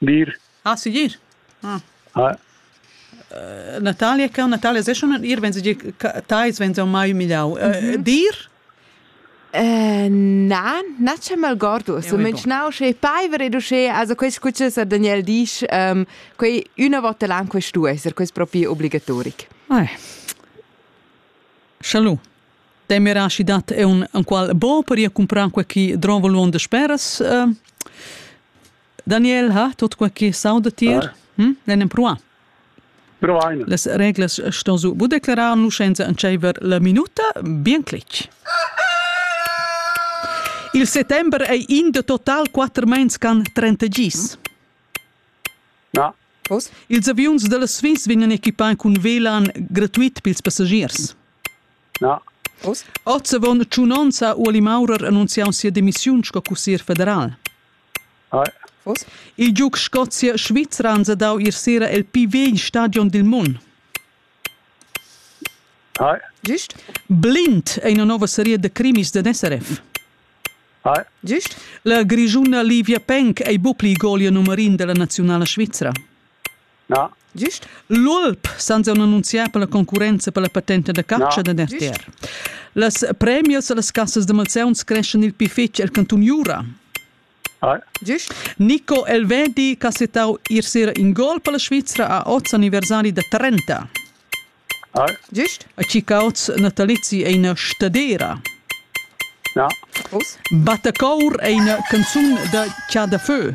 dir ah segir ah ah Natalia cau Natalia se schon ir wenn sie tais wenn sie mai humiliau dir Na, na c'è malgordo, sto mencionare che paiver e duce, also questo qui Sir Daniel dice, um, quei una volta l'anno questo essere, questo proprio obbligatorico. Eh. Schalu. Te mi rashi dat è un, un qual bo per comprar qualche drovo luon de speras. Uh, Daniel, ha tot quai che sauda tier? Hm? L'en empruà? Provaine. Las reglas ston su bu declarar nuschenza en tscheiver la minuta, bien cletg. Il settembre ei in de total quatter mens can 30 gis. Ja. Pos? Ils avions della Swiss vegnan equipai cun velan gratuit pils passagiers. Ja. Oz avon tschunonza u Uli Maurer annunziau sia demissiun sco cussier federal. Il giug Scozia-Svizra ans ha dau ier sera el pi vegl stadion dil mund. Gist? Blind è ina nova seria da crimis da SRF. Gist? La Grischuna Livia Penk ei buc pli golia numerin dalla naziunala svizra. Na. Gist? L'Olp sans annunziar per la concurrenza per la patenta da catscha da Nerter. Las premias las cassas da malsauns creschan il pi fetg el cantun Jura. Gist? Nico Elvedi cassetau ir sera in gol per la Svizra a oz anniversari da 30. Gist? A Cicaoz natalizi è ina stadera. Na. Battacour è ina canzun da Chadafö.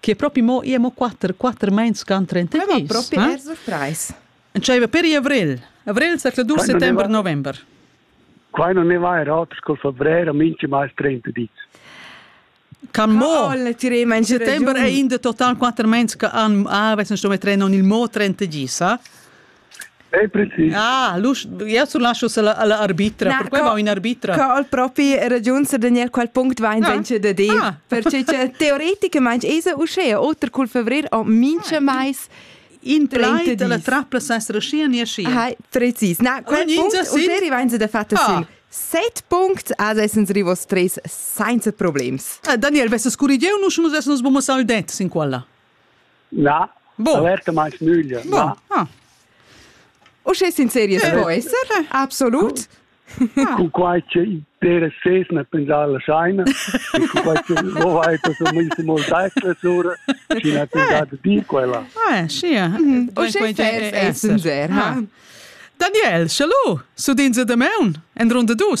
che propi mo ia mo quatter, quatter meins can 32. propi eh? er surprais. Entscheiva per avril. Avril sa cla du settember, november. Qua non ne va er auters col febrer, minci mai 30 dis. Kan mo settember è in de total quatter meins che an avessan sto metre non il mo 30 gisa. È precis. Ah, eu sul lascio alla arbitra, Na, perquai va in arbitra. Co al propi ragiunsa Daniel qual punct va in ah. venture da dir, ah. perché teoreticamente esa uschea, oter col fevrer o mincha ah. mais in 30 di. La trappla s'essere scia ni scia. Hai, precis. Na, quel punct, ulteri vain se da fatto ah. sul. Set punct as essens rivos tres sainza problems. Ah, Daniel, vesse scurigieu, nus nus essens bomo saldet sin quella. Na, bon. averta meins nüglia. Bon. Ah. Uschè sinceria eh. po esser? Absolut. Ah. Cu quai che per ses ne pensar la scheina, cu quai che lo vai per so mi se molt dai sura, ci ne pensar de dir quella. Ah, sia. Uschè fes è sincer, ha. Daniel, schalu, su din se de meun, en runde dus.